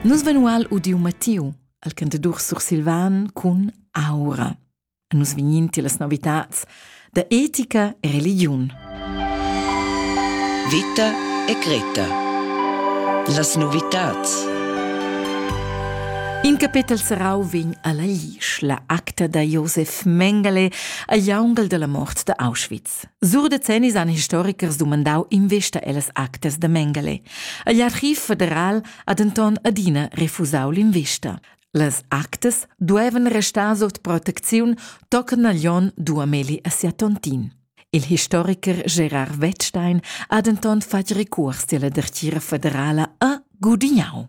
Nus vein ual udiu Mattiu, al cantadur sursilvan cun aura. Nus vegnin tilas novitats da etica e religiun. Vita e Greta. Las novitats. In capetel serrau vegn alla Lisch, la acta da Josef Mengele, a jaungal della mort da Auschwitz. Sur decennis han historikers dumandau investa ellas actas da Mengele. Igl archiv federal ha denton adina refusau l'investa. Las actas duevan restar sut protecziun tochen Naglion duameli a sia tontin. Il historiker Gerard Wettstein ha denton fatg recurs della dertira federala a Gudignau.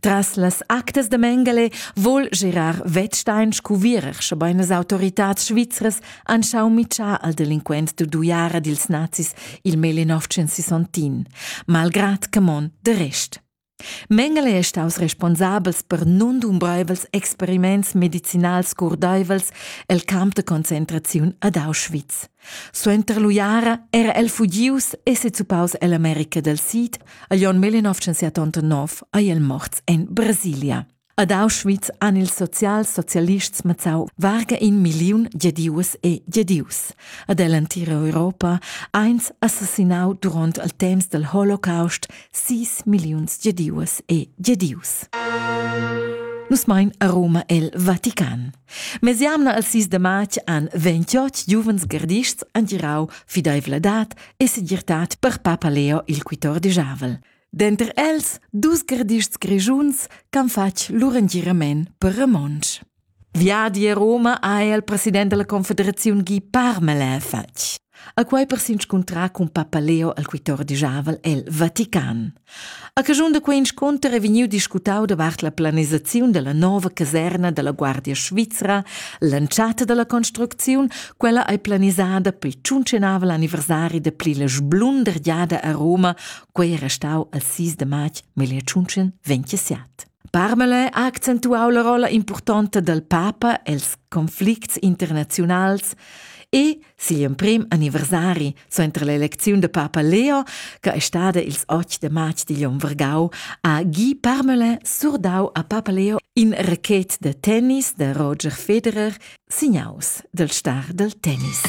Tras las actas de Mengele vol girar Wettstein scuvierer, schebein las autoritads svizras han schau mitschar al delinquent d'uiara dils nazis il mele 960, malgrat che mon de rest. Mengele è staus responsabels per nundumbreivels experiments medicinals curdeivels el camp de concentraziun ad Auschwitz. Suenter l'uiara era el fugius e sezupaus ell'America del Sid, agl onn 1989 ei el morts en Brasilia. Ad Auschwitz han ils sozialsocialists mazzau varga in milliun gedius e gedius. Ad el entira Europa eins assassinau duront al temps del Holocaust sis milliuns gedius e gedius. Nus mein a Roma el Vatican. Mesiamna al sis de matg han 28 giuvens gardists angirau fideivladad e segirtad per papa Leo il quitord Javel. Denter els dus gardists grigiuns han fatg lur angirament per romontsch. Viadi a Roma ha el president della confederazione Guy Parmelin fatg. A quei per s'inscuntrar cun papa Leo al quitord Javel el Vatican. A caschun da quei inscunter è vegniu discutau davart la planisaziun dalla nova caserna dalla Guardia svizra, l'entschatta dalla construcziun, quella ei planisada pel tschuncenavel anniversari da pli la sblundergiada a Roma, quei è restau al 6 de marz 1927. Parmelin ha accentuau la rolla impurtonta dal papa els conflicts internaziunals e siu emprem anniversari suenter l'elecziun da papa Leo, che è stada ils 8 de marz digl onn vargau, ha Guy Parmelin surdau a papa Leo in racket da tennis da Roger Federer, signaus dal star dal tennis.